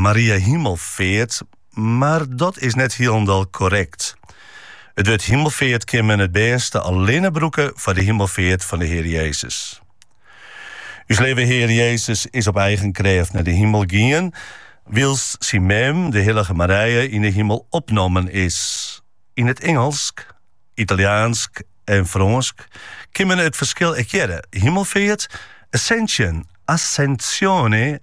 Maria Himelfeart, mar dat is net hielendal korrekt. It wurd himelfeart kin men it bêste allinne brûke foar de himelfeart fan de Hear Jezus. Us Leave Hear Jezus is op eigen krêft nei de himel gien, wylst syn mem, de hillige Marije, yn de himel opnommen is. Yn it Ingelsk, Italjaansk en Frânsk kin men it ferskil ek hearre, himelfeart, ascension, ascensione,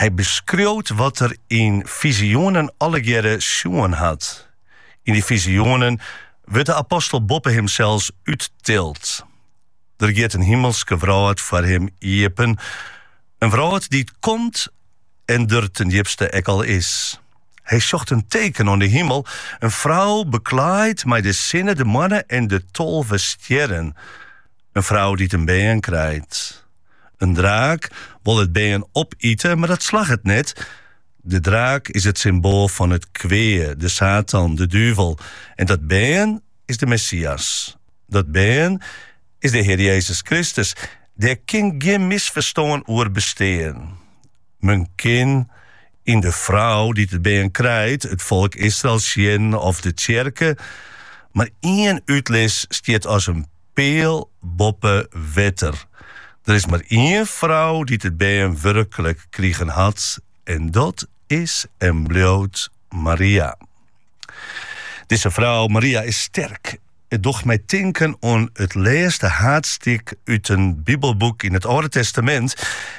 Hy beskriuwt wat er yn fizioenen allegearre sjoen hat. Yn dy fizioenen wurdt de apostel boppe himsels úttild. Der giet in himelske wrâld foar him iepen, in wrâld dy't komt en der ten djipste ek al is. Hy sjocht in teken oan de himel, in frou beklaaid mei de sinne, de moanne en de tolve stjerren. In frou dy't in bern krijt. In draak wol it bern opite, mar dat slagget net. De draak is it symboal fan it kwea, de Satan, de duvel. En dat bern is de Messias. Dat bern is de Hear Jezus Kristus. Dêr kin gjin misferstân oer bestean. Men kin yn de frou dy't it bern krijt it folk Israel sjen of de tsjerke, mar ien útlis stiet as in peal boppe wetter. Der is mar ien frou dy't it bern wurklik krigen hat en dat is en bliuwt Maria. Dizze frou Maria is sterk. It docht my tinken oan it lêste haadstik út in bibelboek yn it Alde Testamint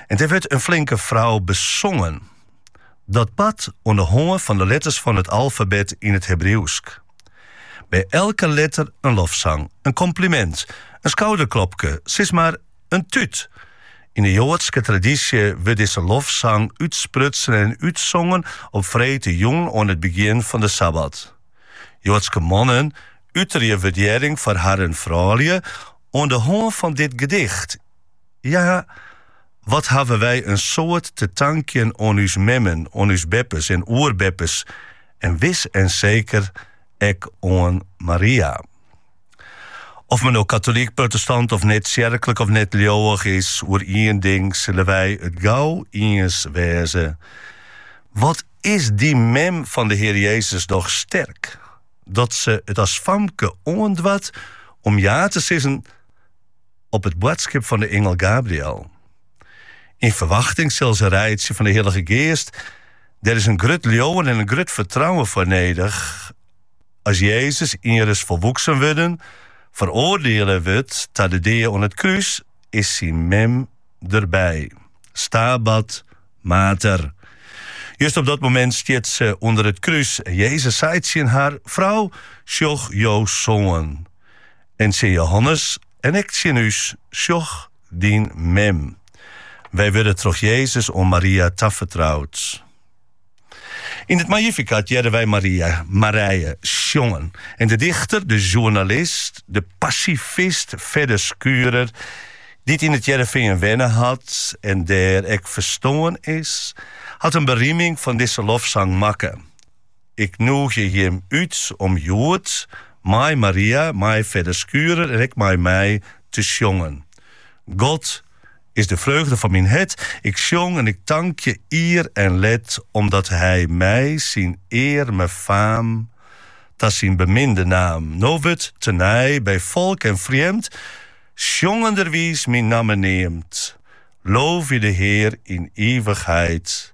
en dêr wurdt in flinke frou besongen. Dat bart oan de hân fan de letters fan it alfabet yn it Hebriuwsk. By elke letter in lofsang, in komplimint, in skouderklopke, sis mar, in tút. Yn de joadske tradysje wurdt dizze lofsang útsprutsen en útsongen op freedtejûn oan it begjin fan de sabbat. Joadske mannen uterje wurdearring foar harren froulju oan de hân fan dit gedicht. Hja. Wat hawwe wy in soad te tankjen oan ús memmen, oan ús beppes en oerbeppes en wis en seker ek oan Maria. Oft men no katolyk, protestant of net tsjerklik of net leauwich is, oer ien ding sille wy it gau iens wêze, wat is dy mem fan de Hear Jezus dochs sterk, dat se it as famke oandoarst om ja te sizzen. op it boadskip fan de ingel Gabriël. Yn ferwachting sille se reitsje fan de Hillige Geast. Der is in grut leauwen en in grut fertrouwen foar nedich. As Jezus ienris folwoeksen wurden, feroardiele wurdt ta de dea oan it krús, is syn mem derby. Stabat Mater. Just op dat moment stiet se ûnder it krús en Jezus seit tsjin har, Frou, sjoch jo soan. En tsjin Jehannes en ek tsjin ús, Sjoch, dyn mem. Wy wurde troch Jezus oan Maria tafertroud. Yn it Magnificat hearre wy Maria, Marije, sjongen. En de dichter, de sjoernalist, de pasifist Fedde Schurer, dy't yn it Hearrenfean wenne hat en dêr ek ferstoarn is, hat in berieming fan dizze lofsang makke. Ik nûgje jim út om hjoed mei Maria, mei Fedde Schurer en ek mei my te sjongen. God is de freugde fan myn hert. Ik sjong en tankje ier en let omdat Hy my syn earme faam ta syn beminde naam. No wurdt tenei by folk en frjemd sjongenderwiis myn namme neamd. Loofje de Hear yn ivichheid.